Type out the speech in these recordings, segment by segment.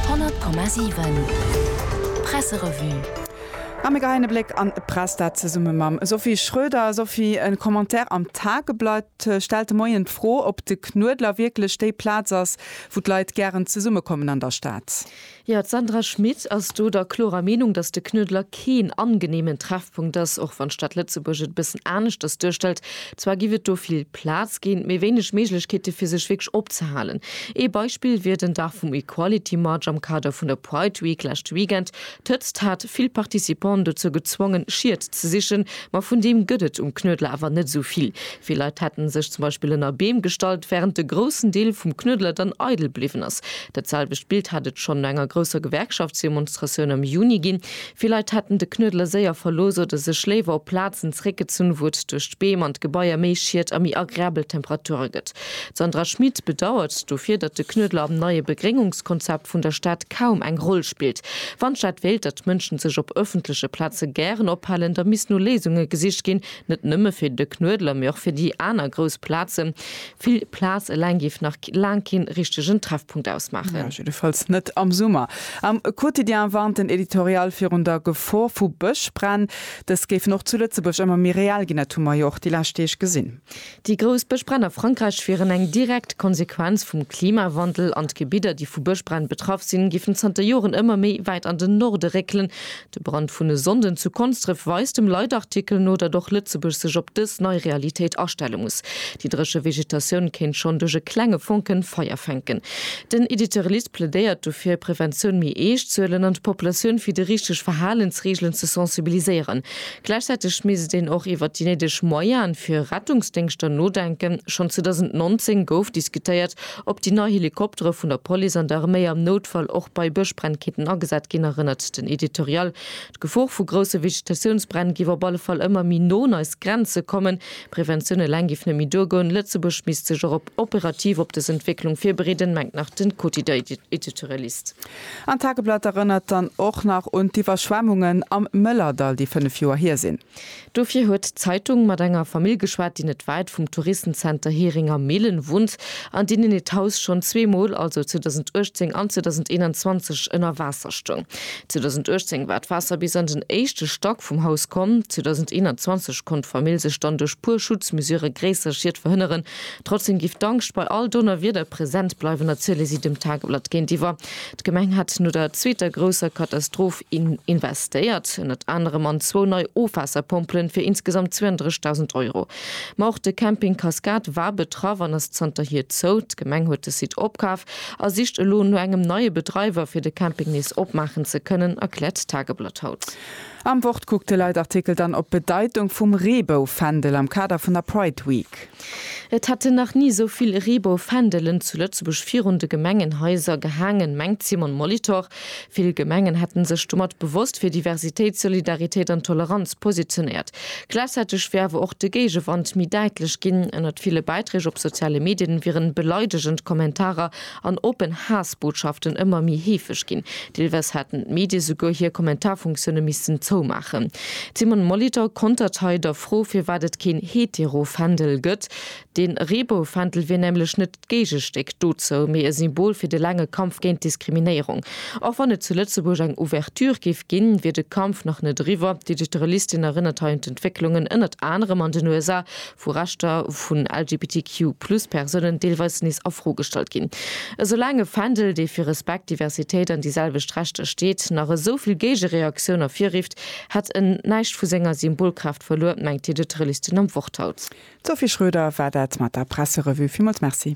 100,7 Presserevue A mir geheien e Bléck an d'Press, dat zesumme mam Sophie Schröder. Sophie, e Commentaire am Tageblatt stellt de Moien d'Fro, ob de Knuedler wierklech déi Plaz ass, wou d'Leit gären zesummekommen an der Stad. Jo, d'Sandra Schmit ass do der klorer Meenung, datt de Knuedler keen angeneemen Treffpunkt ass, och wann d'Stad Lëtzebuerg et e bëssen aneschters duerstellt. Zwar giff et do vill Plaz ginn, mee wéineg Méiglechkeete fir sech wierklech opzehalen. Ee Beispill wier den Dag vum Equality March am Kader vun der Pride Week leschte Weekend. D'Hëtzt hat vill Participanten dozou gezwongen, Schied ze sichen, ma vun deem gëtt et um Knuedler awer net esou vill. Vill Leit hätten sech zum Beispill ënner Beem gestallt, wärend de groussen Deel vum Knuedler dann eidel bliwwen ass. Dat selwecht Bild hätt et schonn no enger grousser Gewerkschaftsdemonstratioun am Juni ginn. Vill Leit hätten de Knuedler séier verlooss oder sech léiwer op Plazen zeréckgezunn, wou et duerch d'Beem an d'Gebaier méi Schiet a méi agreabel Temperature gëtt. D'Sandra Schmid bedauert dofir, datt de Knuedler am neie Begréngungskonzept vun der Stad kaum eng Roll spillt. Wann d'Stad wéilt, datt d'Mënschen sech op ëffentleche Plaze gären ophalen, da misst no Léisunge gesicht ginn, Net nëmme fir de Knuedler, mee och fir déi aner grouss Plazen. Vill Plaz eleng géif nach laang keen richtegen Treffpunkt ausmaachen. Jiddefalls net am Summer. Am Quotidien warnt den Editorial virun der Gefor vu Bëschbränn. Dës géifen och zu Lëtzebuerg ëmmer méi real ginn, dat hu mer jo och déi lescht Deeg gesinn. Déi grouss Bëschbränn a Frankräich wieren eng direkt Konsequenz vum Klimawandel an d'Gebidder, déi vu Bëschbränn betraff sinn, géifen zanter Joren ëmmer méi wäit an den Norde réckelen, De Brand vun e Sonnden zu Konsdref weist dem Leitartikel no, datt och Lëtzebuerg sech op dës nei Realitéit astelle muss. Déi dréche Vegetatioun kéint schonn duerch e klenge Fonken Feier fänken. Den Editorialist plädéiert dofir, Preventioun méi eescht z'huelen an d'Populatioun fir déi richteg Verhalensreegelen ze sensibiliséieren. Gläichzäiteg misst een och iwwert déi néideg Moyaen fir Rettungsdéngschter nodenken. Schonn 2019 gouf diskutéiert, Ob déi nei Helikoptere vun der Police an der Arméi am Noutfall och bei Bëschbränn kéinten agesat ginn, erënnert den Editorial. D'Gefor vu grousse Vegetatiounsbränn giff op alle Fall ëmmer méi no un eis Grenze kommen. Preventioun eleng giff net méi duergoen. Lëtzebuerg misst sech och operativ op dës Entwécklung virbereeden, mengt nach den Quotidien-Editorialist. An d'Tageblatt erënnert dann och nach un d'Iwwerschwemmungen am Mëllerdall, déi fënnef Joer hier sinn. Dofir huet d'Zeitung mat enger Famill geschwat, déi net wäit vum Touristenzenter Heringer-Mehlen wunnt an deenen hiert Haus schonn zwee Mol, also 2018 an 2021, ënner Waasser stoung. 2018 war d'Waasser bis an den éischte Stack vum Haus komm. 2021 konnt d'Famill sech dann duerch puer Schutzmesurë gréisser Schied verhënneren. Trotzdeem géif d'Angscht bei all Donnerwieder present bleiwen, erziele si dem Tageblatt géintiwwer. D'Gemeng hat no der zweeter grousser Katastroph in investéiert, ënnert anerem an zwou nei Ofwaasserpompelen fir insgesamt 32.000 Euro. Ma och de Camping Cascade war betraff an ass zanterhier zou. D'Gemeng huet de Site opkaf a sicht elo no engem neie Bedreiwer fir de Camping nees opmaachen ze kënnen, erkläert d'Tageblatt haut. Am Wortkuckteleid-Artikel dann op d'Bedeitung vum Reebou-Fändel am Kader vun der Pride Week. Et hätten nach ni esou vill Reebou-Fändelen zu Lëtzebuerg virun de Gemengenhaiser gehaangen, mengt d'Simone Molitor. Vill Gemengen hätte sech domat bewosst fir Diversitéit, Solidaritéit an Toleranz positionéiert. Gläichzäiteg wier awer och de Géigewand méi däitlech ginn. Ënnert ville Bäiträg op soziale Medien wieren beleidegend Kommentarer an oppen Haassbotschaften ëmmer méi heefeg ginn. Deelweis haten d'Medie souguer hir Kommentarfunktioune missten zoumaachen. D'Simone Molitor kontert hei der Fro, firwat et keen Hetero-Fändel gëtt. De Reebou-Fändel wier nämlech net d'Géigestéck dozou, mee e Symbol fir de laange Kampf géint d'Diskriminéierung. Och wann et zu Lëtzebuerg eng Ouverture géif ginn, wier de Kampf nach net eriwwer. D'Editorialistin erënnert hei un d'Entwécklungen ënnert anerem an den USA, wou Rechter vun LGBTQ-Plus-Persounen deelweis nees a Fro gestallt ginn. Esoulaang e Fändel, dee fir Respekt, Diversitéit an déi selwecht Rechter steet, nach esou vill Géigereaktioun ervirrifft, hätt en näischt vu senger Symbolkraaft verluer, mengt d'Edith Relistian am Wort haut. D'Sophie Schroeder war dat mat der Presserevue. Villmools Merci.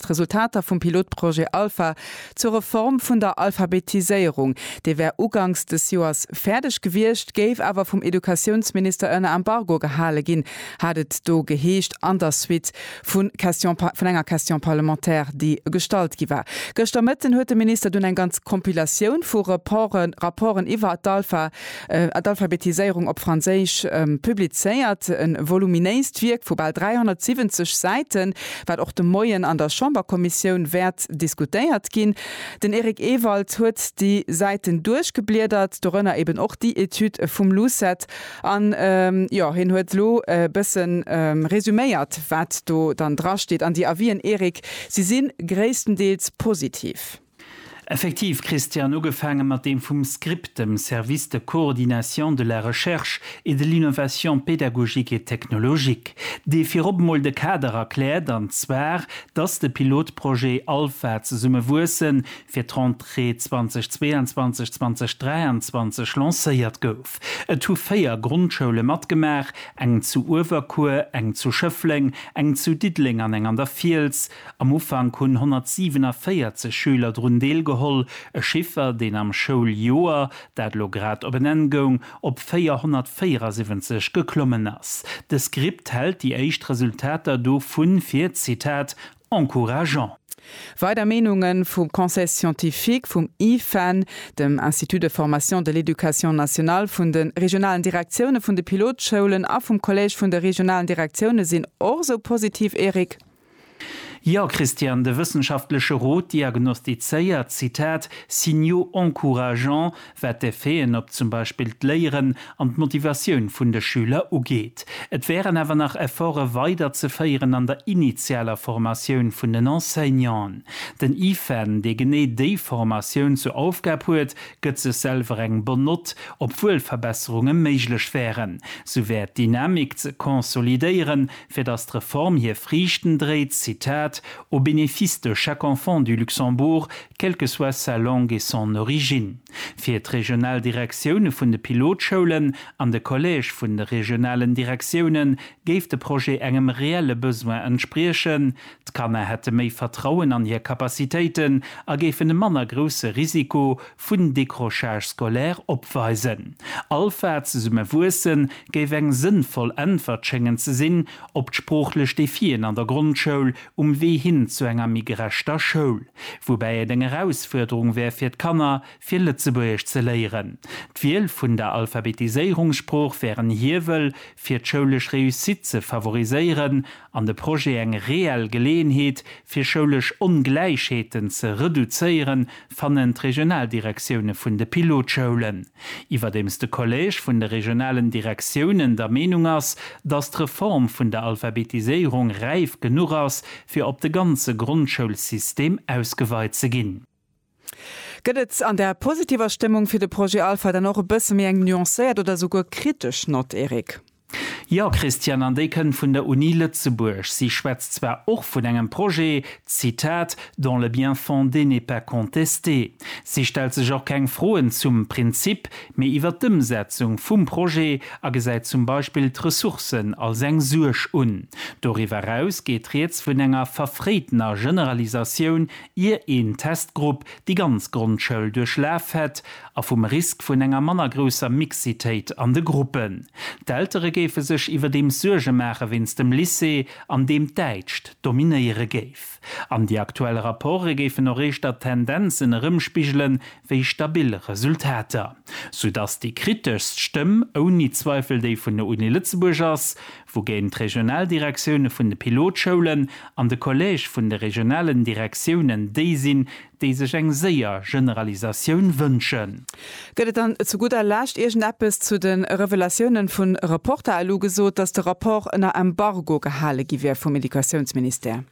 d'Resultater vum Pilotprojet Alpha zur Reform vun der Alphabetiséierung. Dee wär uganks des Joers fäerdeg gewiescht, géif awer vum Educatiounsminister ënner Embargo gehale ginn, hat et do geheescht an der Suite vu Question, vun enger Question parlementaire, déi gestallt gi war. Gëschter Mëtten huet de Minister dunn eng ganz Compilatioun vu Reporten, Rapporten iwwer d'Alpha, Ad. Alphabetiséierung op Franséisch publizéiert. E voluminéist Wierk vu bal 370 Säiten, wat och de Moien an der Chamberkommissioun wäert diskutéiert ginn. Den Eric Ewald huet déi Säiten duerchgebliedert, dorënner eben och déi Etüd vum Lucet an, jo, hien huet elo e bësse resuméiert, wat do dann drasteet. An déi Avisen, Eric, si si gréisstendeels positiv. Effektiv, Christian, ugefaange mat deem vum SCRIPT, dem Service de coordination de la recherche et de l'innovation pédagogique et technologique, dee virop emol de Kader erkläert, an zwar, dass de Pilotprojet Alpha zesumme wuessen fir d'Rentrée 2022, 2023 lancéiert gouf. Et hu véier Grondschoule matgemaach, eng zu Uewerkuer, eng zu Schëffleng, eng zu Diddeleng an eng an der Fiels, Am Ufank hunn 147 Schüler drun deelgeholl, e Chiffer, deen am Schouljoer, dat elo grad op en Enn goung, op 474 geklommen ass. De Script hält déi éischt Resultater dovun fir, Zitat, encourageant. Weider Meenunge vum Conseil scientifique, vum IFAN, dem Institut de formation de l'éducation nationale, vun de regionalen Direktioune vun de Pilotschoulen a vum Collège vun de regionalen Direktioune sinn och esou positiv, Eric? Jo, Christian, de wëssenschaftleche Rot diagnostizéiert, Zitat, Signaux encourageants, wat d'Effeten op zum Beispill d'Léieren an d'Motivatioun vun de Schüler ugeet. Et wären awer nach Efforte weiderzeféieren an der initialer Formatioun vun den Enseignanten. Den IFEN, dee genee déi Formatioun zur Aufgab huet, gëtt sech selwer eng Bonne Note, obwuel Verbesserunge méiglech wären. Sou wär d'Dynamik ze consolidéieren, Fir datt d'Reform hir Friichten dréit, Zitat, au bénéfice de chaque enfant du Luxembourg, quelle que soit sa langue et son origine. Fir d'regional Direktioune vun de Pilotschoulen an de Collège vun de regionalen Direktioune géif de Projet engem reelle Besoin entspriechen, D'Kanner hätte méi Vertrauen an hir Capacitéiten a géifen e manner grousse Risiko vun Décrochage scolaire opweisen. Alpha, zesumme wuessen, géif eng sënnvoll Äntwert schéngen ze sinn op d'sproochlech Defien an der Grondschoul um Wee hin zu enger méi gerechter Schoul. Woubäi et eng Erausfuerderung wär fir d'Kanner, fir Lëtzebuergesch ze léieren. D'Wiel vun der Alphabetiséierungssprooch wär en Hiewel, fir d'schoulesch Réussite ze favoriséieren an de Projet eng reell Geleeënheet fir schoulesch Ongläichheeten ze reduzéieren, fannen d'Regionaldirektioune vun de Pilotschoulen. Iwwerdeems de Collège vun de regionalen Direktiounen der Meenung ass, datt d'Reform vun der Alphabetiséierung räif genuch ass, fir op de ganze Grondschoulsystem ausgeweit ze ginn, Gëtt et an der positiver Stëmmung fir de Projet Alpha dann och e bësse méi eng nuancéiert oder souguer kritesch Nott, Eric? Jo, Christiane, an déi kënnt vun der Uni Lëtzebuerg. Si schwätzt zwar och vun engem Projet, Zitat, dont le bien-fondé n'est pas contesté. Si stellt sech och keng Froen zum Prinzip, mee iwwer d'Ëmsetzung vum Projet a gesäit zum Beispill d'Ressourcen als eng Suerg un. Doriwwer eraus geet rieds vun enger verfréitener Generalisatioun ier een Testgrupp déi ganz Grondschoul duerchlaf hätt, a vum Risk vun enger manner grousser Mixitéit an de Gruppen. D'Eltere géife sech iwwerdeems Suerge maache wéinst dem Lycée, an deem d'Däitscht dominéiere géif. An déi aktuell Rapporte géifen och éischter Tendenzen erëmspigele wéi stabil Resultater. Soudass déi kriteschst Stëmm ouni Zweifel déi vun der Uni Lëtzebuerg ass, wougéint d'Regionaldirektioune vun de Pilotschoulen an de Collège vun de regionalen Direktiounen déi sinn, déi sech eng séier Generalisatioun wënschen. Gëtt et dann zu gudder Lescht iergendeppes zu de Revelatiounen vu Reporter? Elo gesot, datt de Rapport ënner Embargo gehale gi wier vum Educatiounsministère.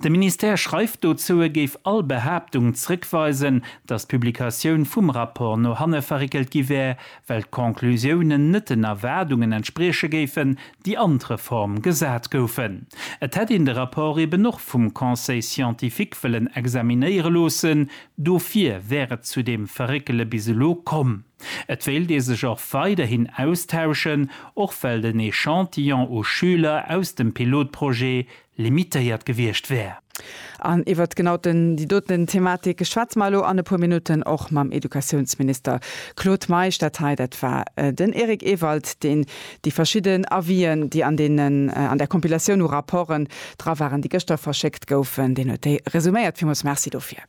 De Ministère schreift dozou, e géif all Behaaptung zrëckweisen, datt d'Publikatioun vum Rapport no hanne verréckelt gi wär, well d'Conclusiounen net den Erwaardungen entsprieche géifen, déi an d'Reform gesat goufen. Et hätt een de Rapport eben och vum Conseil scientifique wëllen examinéiere loossen, dofir wär et zu deem Verréckele bis elo komm. Et wéilt ee sech och weiderhin austauschen, och well den Echantillon u Schüler aus dem Pilotprojet limitéiert gewiescht wär. An iwwert genau déi doten Thematik schwätze mer elo an e puer Minutten och mam Educatiounsminister Claude Meisch. Dat hei, dat war den Eric Ewald, deen déi verschidden Avis'en, déi an deenen, an där Compilatioun u Rapporten dra waren, déi gëschter verschéckt goufen, deen huet déi resuméiert. Villmools Merci dofir.